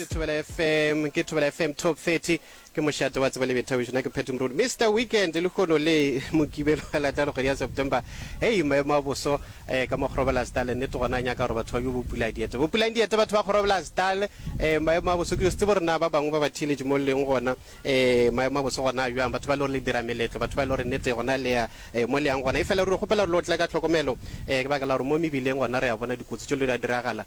ke thobela fm ke thobela fm top 30 ke mošate wa tseba le bethabišo na ke phetho morodi mr weekend le kgono le mokibelo wa latano kgwedi ya september hei maemo a boso eh, ka mo kgorobelasdale nnete gona a nyaka gore batho ba bjo bopula diete bopulang diete batho ba kgorobelasdale eh, maemo a boso ke setse borena ba bangwe ba ba theeletše mo leng gona eh, maemo a boso gona a bjang batho ba le gore le dira meletlo batho ba le gore nnete gona le ya eh, mo leyang gona e fela ruri kgopela re lo tla ka tlhokomelo eh, ke baka la gore mo mebileng gona re a bona dikotsi tšo le di a diragala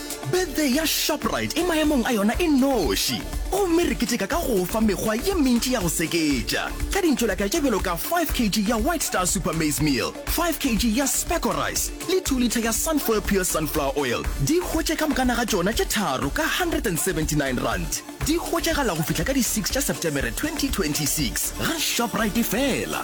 Birthday ya Shoprite e maemong a yona e noši, gomme re keteka ka go o fa mekgwa ye mentši ya go seketša ka dintšolaka tše bjalo ka 5 kg ya White Star Super Maize Meal, 5 kg ya Specco Rice le 2 litha ya Sunfoil Pure Sunflower Oil. Di hwetše ka mokana ga tšona tše tharo ka R179. Di hwetšagala go fihla ka di 6 tša Setemere 2026 ga Shoprite fela.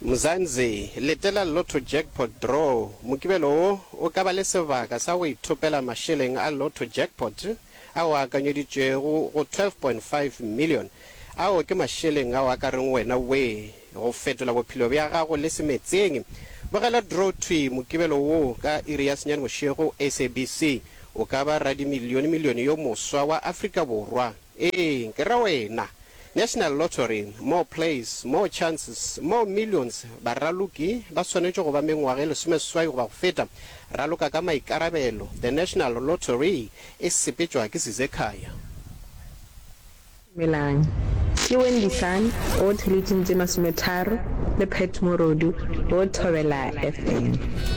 Mzansi, Letela Lotto Jackpot Draw, Mokibelo wo o ka ba le sebaka sa go ithopela mašeleng a Lotto Jackpot ao a akanyeditšwego go 12.5 million. Ao ke mašeleng ao a ka reng wena wee go fetola bophelo bja gago le semetseng. Bogela Draw Thwi, Mokibelo wo ka iri ya senyane bošego, SABC, o ka ba radimilione-milione yo moswa wa Afrika Borwa. Ee, ke re wena. National Lottery, more plays, more chances, more millions, baraloki ba swanetše go ba mengwaga e lesomeseswai goba go feta. Raloka ka maikarabelo, the National Lottery e sepetšwa ke Sizekhaya. Dumelang, ke Wendy Sun o theleitšeng tše masometharo le Pat Morodu o thobela FM.